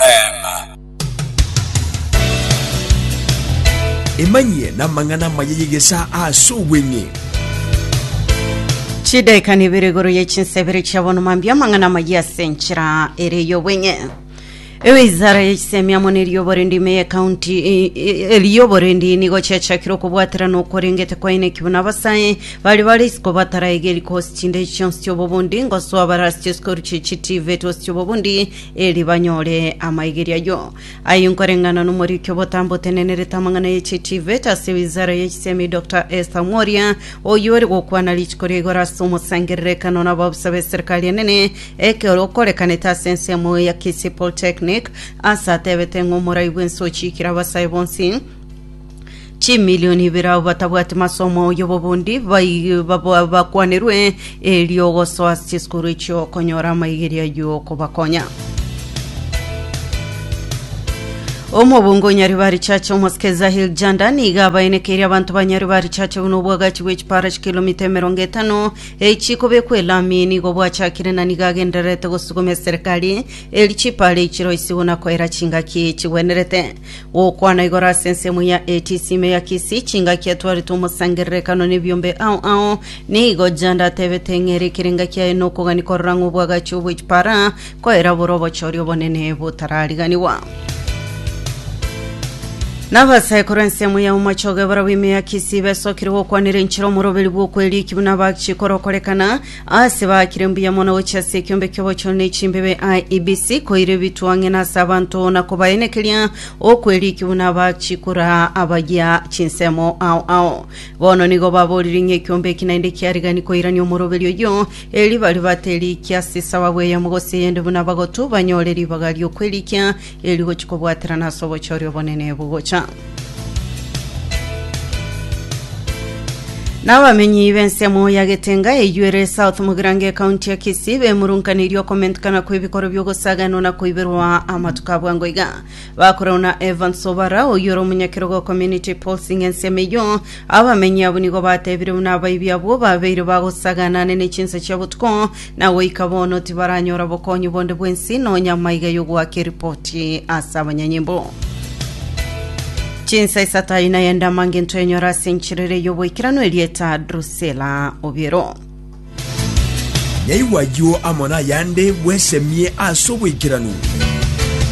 Eema. Emanyie namang'ana amaya y'egesaa ase obweng'e. Chidaeka nibere igoro ye chinsa ibere chia bono mambia amang'ana amayia ase enchera ere y'obweng'e ewizara ya chisemi amo ne riobo rende ime ye county e- e- eriobo rende nigo chiachakire okobwaterana okorengete kwaineki buna abasae bari bare isiko bataraegeri kosi chinde chionsi chiobobundi ngosoa bare ase chisukuru chie chitivet ase chiobobundi eri banyore amaigeri ayio. Ayio nkoreng'ana n'omoriki obotambe otenenerete amang'ana ye chitivet ase wizara ye chisemi Doctor Esther Mworia, oyio ore gokwana rituko ria igoro ase omosangererekano na abaofisa be serikali enene ekero okorekanete ase ensemo ya Kisii Polytechnic, ase atebete ng'a omorai bw'ense ochiikire abasae bonsi chimilioni ibere abwo batabwati masomo y'obobundi bai- babo- bakwanerwe erio gosoa ase chisukuru echio konyora amaigeria y'okobakonya omobungo o nyaribari chache omosike zahil janda niga abaenekeirie abanto ba nyaribari chache buna obwagachi bwe chipara chikilomita emerongo etano echikobekwa elami nigo bwachakire na nigo agendererete gosuguma eserekari eri chipara echi chiroisi buna koera chingaki chigwenerete Gokwana igoro ase ensemo ya ATC ime ya Kisii, chingaki etwarete omosangererekano nebiombe ao ao. Nigo Janda atebete ng'a ere ekerenga kiaye nokogani korora ng'a obwagachi obwe chipara koera bore obochori obonene botarariganiwa. Nabasaekuru ensemo ya omochoge barabwo ime ya Kisii besokire gokwanera enchera omoroberi bw'okweririki buna bagchikora okorekana Aase baakire mbuya mono gochia ase ekiombe ki'obochore ne chimbebe IEBC koira ebitwa ang'e na ase abanto na kobaenekeria okwerikia buna abachikora abayia chinsemo ao ao. Bono nigo baborire ng'a ekiombe eki naende kiarigani koirania omoroberi oyio, erio baria baterikia ase esababu eyemo gose eyende buna bagotu banyore ribaga ri'okwerikia Erio gochia kobwaterana ase obochori obonene bogocha. Na abamenyi b'ensemo ya Getenga eyio ere South Mugirango ekaunti ya Kisii bemurunkaneirie okomentikana kw'ebikoro bi'ogosaganwa na koiberwa amatuko a bwango iga. Bakorerwa na Evans Obara oyio ore omonyakerogo o Community Pulse ng'a ensemo eyio abamenyi abwo nigo batebire buna abaibi abwo babeire bagosagana ane ne chinsa chia botuko Na goika bono tibaranyora bokonyi bonde bw'ense, nonya amaiga y'ogoaka eripoti ase abanyanyimbo. Chinsa isato ayio naye ndamanga into enyora ase enchera ere y'oboikeranu erieta Drusela Obiero. Nyaigwa ayio amo nayande bwesemie ase oboikeranu.